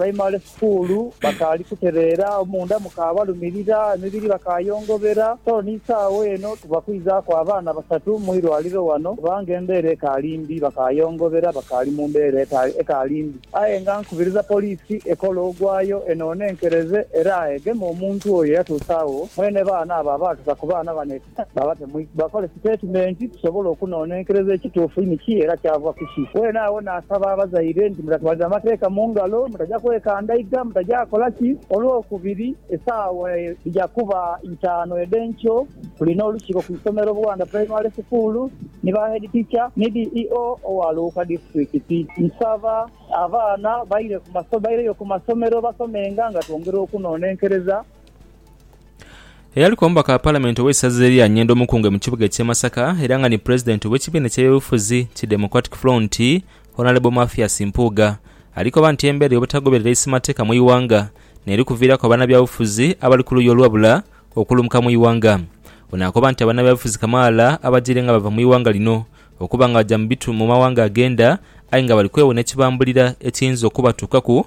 Baimale sukuulu, bakaali kutereera, omunda mukaabalumirira, emibiri bakaayongobera. So n'eisaawa eno tuba kwizaaku abaana basatu mu irwaliro wano kubanga embeera ekaali mbi. Bakaayongobera, bakaali mu mbeera ekaali mbi. Aye nga nkubiriza poliisi ekole ogwayo enoonenkereze era egeme omuntu oyo eyatuusa agho. Mwene baana abo abaatusa ku baana bano. Baba tebakola sitatimenti kusobola okunonenkereza ekituufu ni ki era kyava ku ki. Weene agho naasaba abazaire nti, Mutatwaliza amateeka mu ngalo, mutaja kwekandaiga, mutaja kola ki. Olwokubiri, esaawa dhija kuba itaanu edh'enkyo, tulina olukiiko ku isomero Buwanda Primary School ni ba Head Teacher ni DEO owa Luuka Disiturikiti. Nsaba abaana baire ku masomero, baireyo ku masomero basomenga nga twongera okunonenkereza Eyaliku omubaka wa Palamenti ow'eisaza erya Nyendo Mukunge mu kibuga eky'e Masaka era nga ni Pulezidenti ow'ekibiina eky'ebyobufuzi ki Democratic Front, Honalebo Mathias Mpuuga ali koba nti embeera ey'obutagoberera isi mateeka mu ighanga n'eri kuviiraku abanabyabufuzi abali ku luuyi olwabula okulumuka mu ighanga. Ono akoba nti abanabyabufuzi kamaala abajiire nga bava mu ighanga lino okuba nga baja mu mawanga agenda aye nga bali kwewona ekibambulira ekiyinza okubatuukaku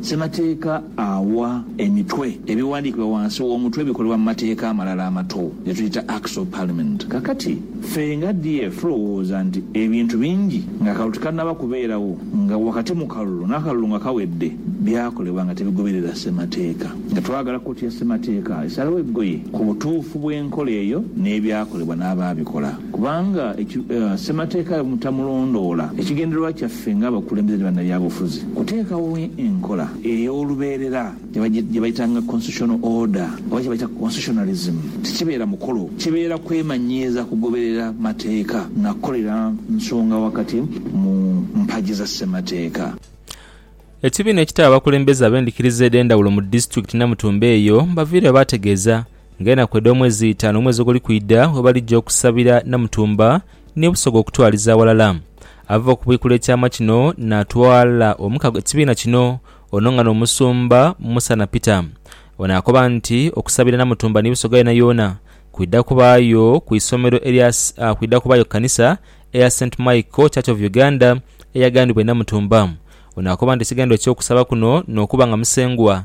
Ssemateeka awa emitwe ebiwandiikibwa wansi w'omutwe ebikolebwa mu mateeka amalala amato ge tuyita Acts of Parliament. Kakati, ffe nga DF tulowooza nti ebintu bingi ng'akalulu tikannaba kubeerawo, nga wakati mu kalulu n'akalulu nga kawedde, byakolebwa nga tebigoberera Ssemateeka. Nga twagala kkooti ya Ssemateeka esalewo eggoye ku butuufu bw'enkola eyo n'ebyakolebwa n'abaabikola. Kubanga Ssemateeka bwe mutamulondoola, ekigendererwa kyaffe ng'abakulembeze ni bannabyabufuzi kuteekawo enkola ey'olubeerera gye bayitanga Constitutional Order oba kye bayita Constitutionalism. Tikibeera mukolo, kibeera kwemanyiiza kugoberera mateeka na kukolera nsonga wakati mu mpagi za Ssemateeka. Ekibiina ekitaba abakulembeze ab'endhikiriza edh'endhawulo mu disitulikiti Namutumba eyo baviire baategeeza Ng'enaku edh'omwezi itaanu omwezi oguli kwidha bwe balija okusabira Namutumba ni Busoga okutwaliza aghalala. Ava okubwikula ekyama kino naatwala omukago ekibiina kino ono nga n'omusumba Musana Peter. Ono akoba nti okusabira Namutumba ni Busoga yoonayoona kwidha kubaayo ku isomero erya kwidha kubaayo ku kanisa eya Saint Michael Church of Uganda eyagandhibwa e Namutumba. Ono akoba nti ekigendererwa eky'okusaba kuno n'okuba nga Musengwa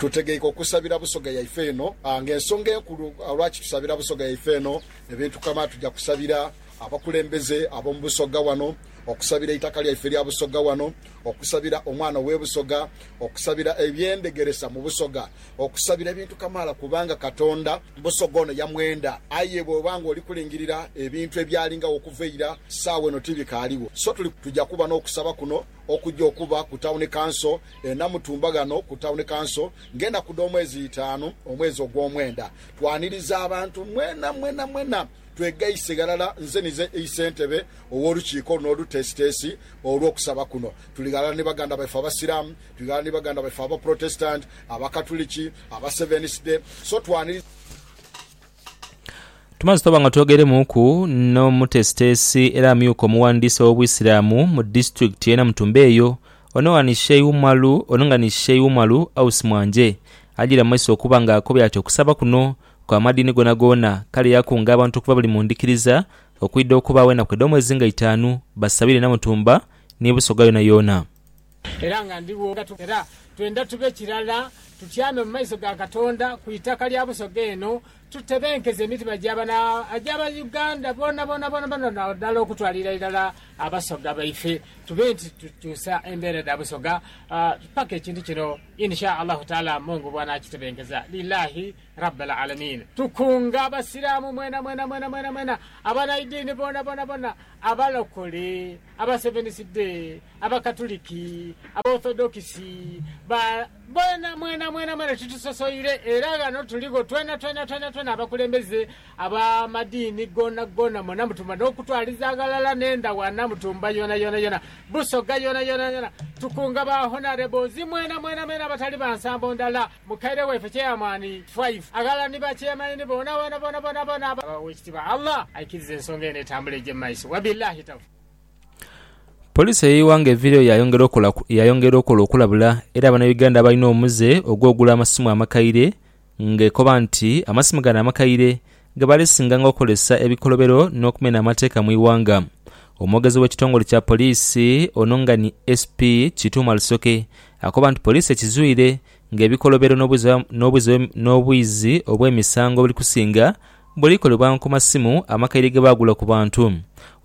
Tutegeike okusabira busoga yaife eno nga ensonga enkulu lwaki tusabira busoga yaife eno. Ebintu kama tuja kusabira abakulembeze ab'omu busoga wano, okusabira eitaka lyaife erya busoga wano, okusabira omwana owe busoga, okusabira eby'endhegeresa mu busoga, okusabira ebintu kamaala kubanga Katonda busoga ono yamwenda. Aye bwoba nga oli kulingirira ebintu ebyalingagho okuva eira, saawa eno tibikaaligho. So tuja kuba n'okusaba kuno okuja okuba ku Town Council Enamutumba ghano ku Town Council ng'enaku dh'omwezi itaanu omwezi ogw'omwenda. Twaniriza abantu mwena mwena mwena twegaise ghalala nze nize Isentebe ow'olukiiko luno oluteesiteesi olw'okusaba kuno. Tuli ghalala ni baganda baife Abasiraamu, tuli ghalala ni baganda baife Abaprotestanti, Abakatuliki, Abaseveniside so twaniriza. Tumaze twaba nga twogeiremuuku n'omuteesiteesi era amyuka omughandiisi ow'Obusiraamu mu disitulikiti y'e Namutumba eyo, ono nga ni Sheih Umalu ono nga ni Sheih Umalu Ausi Mwanje ajiire mu maiso okuba nga akobye ati okusaba kuno kwa madiini goonagoona kale yakunga abantu okuva buli mu ndhikiriza okwidha okubaagho enaku edh'omwezi nga itaanu basabire Namutumba ni Busoga yoonayoona. Era nga ndi wo, nga tu, era twendha tube kirala, tutyame mu maiso ga Katonda ku itaka lya Busoga eno, tutebenkeze emitima gya bano Agy'Abauganda boonaboona, boonaboona, nadala okutwalira irala Abasoga baife, tube nti tukyusa embeera dha Busoga paka ekintu kino In sha Allahu Taala Mungu bw'anaakitebenkeza. Lilaahi Rabbal Alamiin. Tukunga Abasiraamu mwena mwena, mwena mwena, mwena, abanaidini boonaboona, bona, Abalokole, Abaseveniside, Abakatuliki, Abaorthodokisi, ba, boona, mwena, mwena, mwena titusosoire, era ghano tuligho twena, twena, twena, twena abakulembeze ab'amadiini goona goona, mwena mutumba, n'okutwaliza ghalala n'endhawana, mutumba yoona, yoona, yoona, Busoga yoona, yoona, yoona, tukunga ba Honourables mwena, mwena, mwena abatali ba nsambo ndala, mukaire waife Chairman Five, aghalala ni ba Chairmaini boona, boona, boona, boona, boona, aba, Owekitiibwa Allah aikirize ensonga eno etambule eije mu maiso. Wabillahi Tawfiq. Poliisi ey'eighanga eviireyo yayongera okola okulabula era Bannayuganda abalina omuze ogw'ogula amasimu amakaire ng'ekoba nti amasimu gano amakaire gebaali singanga okukozesa ebikolobero n'okumena amateeka mu ighanga. Omwogezi w'ekitongole kya poliisi ono nga ni SP Kituuma Rusoke akoba nti poliisi ekizwire Ng'ebikolobero n'obuziba n'obwizi obw'emisango buli kusinga, buli kolebwa ku masimu amakaire ge baagula ku bantu.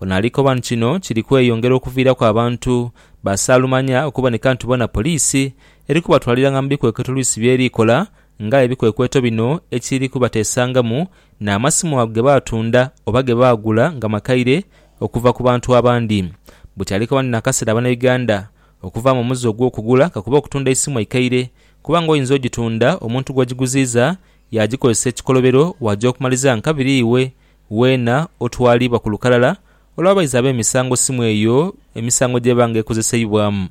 Ono ali koba nti kino kiri kweyongera okuviiraku abantu ba saalumanya okuboneka nti bona poliisi eri kubatwaliranga mu bikwekweto lwisi by'eri ekola ng'aye ebikwekweto bino ekiri kubateesangamu n'amasimu ago ge baatunda oba ge baagula nga makaire okuva ku bantu abandi. Buti ali koba nti n'akaseera Bannayuganda Okuvaamu omuze ogw'okugula ka kuba okutunda eisimu eikaire kubanga oyinza ogitunda omuntu gw'ogiguziiza yaagikozesa ekikolobero waaja okumaliza nka biri iwe weena otwaliibwa ku lukalala olw'abaizi ab'emisango simu eyo emisango gy'eba nga ekozeseibwamu.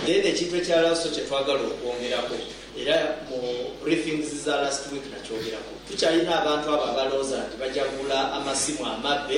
Then ekintu ekya laso kye twagala okwongeraku era mu briefings za last week nakyogeraku, tukyalina abantu abo abalowoza nti baja gula amasimu amabbe,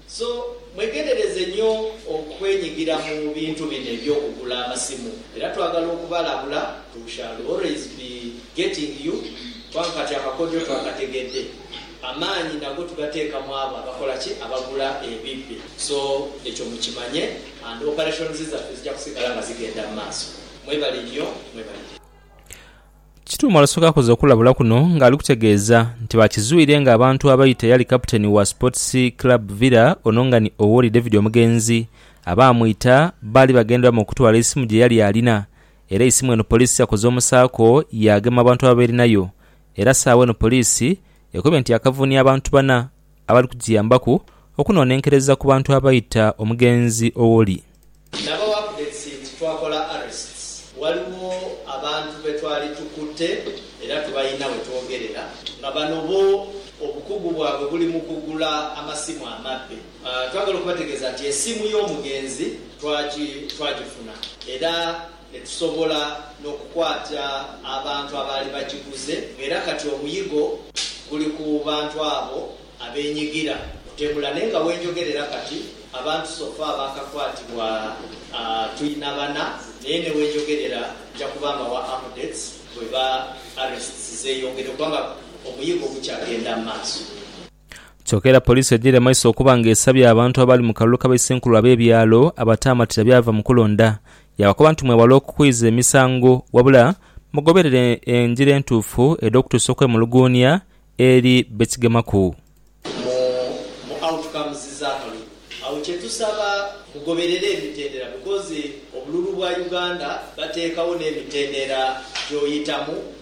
So, mwegendereze nyo okwenyigira mu bintu bino eby'okugula amasimu era twagala okubalabula, we shall always be getting you kubanga kati amakodyo twagategedde, amaanyi nago tugateeka mu abo abakola ki? Abagula ebibbe. So, ekyo mukimanye and operations zaffe zija kusigala nga zigenda mu maaso. Mwebale nyo, mwebalire. Kituuma olwasooka akoze okulabula kuno ng'ali kutegeeza nti baakizwire ng'abantu abaita eyali kaputeni wa Sports Club Villa ono nga ni Owori David Omugenzi abaamwita baali bagendera mu kutwala eisimu gye yali alina era eisimu eno poliisi yakoze omusaako yaagema abantu ababeerinayo era saagho eno poliisi ekobye nti yaakavuunia abantu bana abali kugiyambaku okunonenkereza ku bantu abaita omugenzi Owori. Nabawa updates nti twakola arrests, waliwo abantu betwali tukutte era tubalina wetwogerera nga bano bo obukugu bwabwe buli mu kugula amasimu amabbe. Twagala okubategeeza nti esiimu y'omugenzi twagifuna era. Etusobola n'okukwata abantu abaali bagiguze ng'era kati omuyigo guli ku bantu abo abeenyigira mu temula. Naye nga wenjogerera kati, abantu sofa abaakakwatibwa twina bana, naye ni wenjogerera nja kuba mbawa updates bweba arrests zeeyongedde kubanga omuyigo gukyagenda mu maaso. Kyoka era poliisi yajaire amaiso okuba nga esabye abantu abaali mu kalulu ka baisenkulu ab'ebyalo abataamatira byava mu kulonda, yaabakoba nti mwewale okukwiza emisango wabula mugoberere engira entuufu edh'okutuusa okwemuluguunia eri be kigemaku. Mu mu outcomes z'akalulu agho kye tusaba mugoberere emitendera because obululu bwa Uganda bateekagho n'emitendera gy'oyitamu.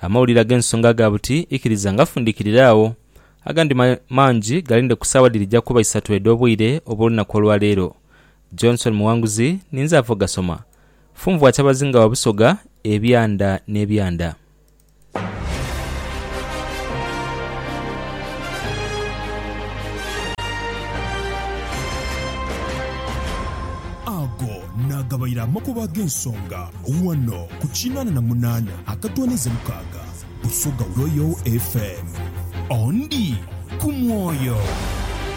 Amawulire ag'ensonga aga buti ikiriza ngafundikirira agho, agandi mangi galinde ku saawa dhirija kuba isatu edh'obwire obw'olunaku olwa leero. Johnson Muwanguzi ninze ava ogasoma. Funvua Kyabazinga wa Busoga, Ebyanda n'ebyanda. n'agabaire amakubo ag'ensonga ghano ku kinaana na munaana akatwaniza mukaaga Busoga Royal FM. Ondi ku mwoyo.